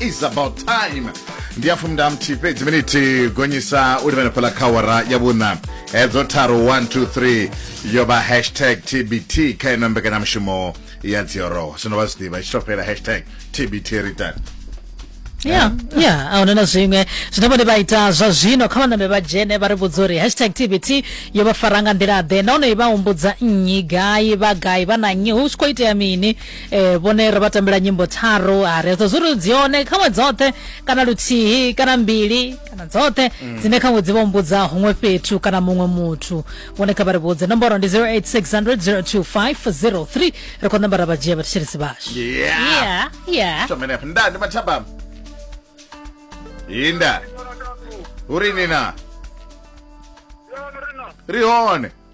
is about time ndi afho mnda mthi fhedzi minithi gonyisa u livhana fhala khawara ya vhuṋa hedzo tharu 123 yo vha hashtag tbt kha ino mbekanyamushumo ya dzioroho zwino vha zwi ḓivha tshito fhela hashtag tbt return ya ya ahuna na zwiṅwe zwine vhone vha ita zwa zwino kha vhanambe vha dzhene vha ri vhudza uri hashtag tbt yo vha fara nga nḓila ḓe nahone i vha humbudza nnyi gai vha gai vha na nnyi hu tshi khou itea mini eh vhone ri vha tambela nyimbo tharu a ri zwo ri dzi hone kha ṅwedzi dzoṱhe kana luthihi kana mbili kana dzoṱhe mm. dzine kha ṅwedzi vha mbudza huṅwe fhethu kana muṅwe muthu vhone kha vha ri vhudze nomboro ndi 0860025503 ri khou nambara vha dzhia vhathetshelesi vhashu yeah yeah tshomene hafha nda ndi mathaba inda uri nina ri hone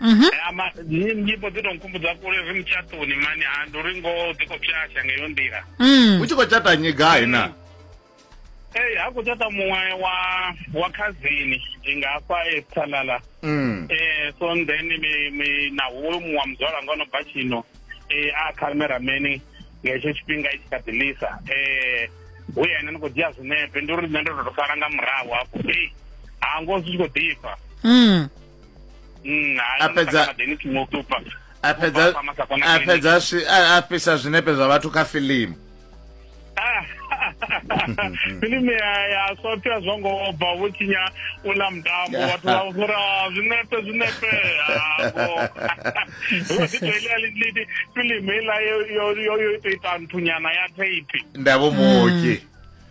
Mhm. Eh, ama nyi- nyimbo dzi to nkhumbudza kule ri mutshatoni mani ha ndi uri ngoho dzi khou pshasha nga iyo nḓila Mm. u tshi khou tshata nyi gai na ei ha khou tshata muṅwe wa wa khazini ndi nga hafha e phalala Mm. eh so and then mi mi na hoyo muṅwe wa muzwala nga no bva tshino eh a cameraman nga hetsho tshifhinga i tshi kha ḓilisa eh hu yena ni khou dzhia zwinepe ndi uri nṋe ndo to to sala nga murahu hafho ei ha ngo zwi tshi khou ḓifha Mm. mm, apedza a fhisa zwinepe zwa vhathu kha filimu filimu ya sofi a zwo ngo bva vho tshinya uḽa mutambo vhathu vha fura zwinepe zwinepe itoilaliti filimu ila yo ito ita nthunyana ya theipi ndavho muoki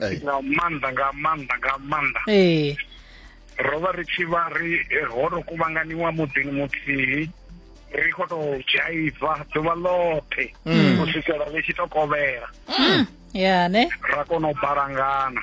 Ei. nga maanḓa nga maanḓa nga maanḓa ee ro vha ri tshi vha ri eh, ho tou kuvhanganiwa muḓini muthihi ri khou tou dzhaiva ḓuvha ḽoṱhe u swikela ri tshi tou kovhela ya ne ra kona u balangana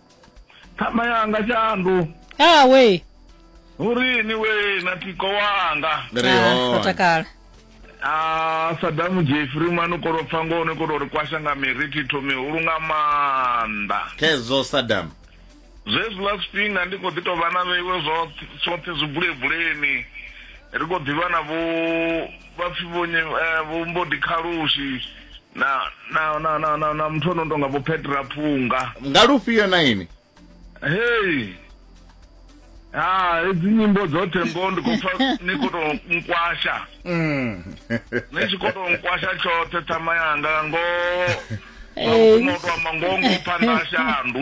khama yanga shandu ah we hurini we na tiko wanga ri Ah, ro hone takala a sadamu jeffrey mwana ukoro pfa ngone kuri uri kwashanga miritito mihulu nga maanḓa khezwo sadam zwezwiḽa zwifhinga ndi khou ḓi tou vha na vheiwe zwoṱhe zwoṱhe zwibulebuleni ri khou ḓivha na vho Vhapfi vho nye, vho Mbodi Khalushi na, na, na, na, na, na muthu o no tou nga vho Petra Phunga. Nga lufhio na inwi? Hei! Ha, hedzi nyimbo dzoṱhe ngoho ndi khou pfa ni khou tou nkwasha. Ni tshi khou tou nkwasha tshoṱhe ṱhama yanga ngoho. Nga vhukuma u tou amba ngoho ngoho phanḓa ha shandu.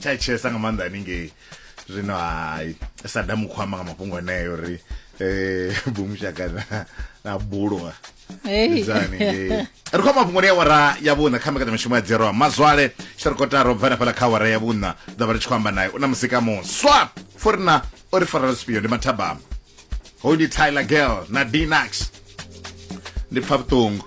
thetshelesa nga maanḓa haningei zwino hai sada mukhwama nga mafhungo aneyo uri um bumushaka na bulwa ri khou mafhungo ni awara ya vhuṋa kha mbekanyamishumo ya dzirwa mazwale sherikotaro bva nafhala kha awara ya vhuṋa ḓa vha ri tshi khou amba naye u na musika muswa forina o ri farela zwifhio ndi mathabama hoyu ndi tyler girl na dinax ndi pfa vhuṱungu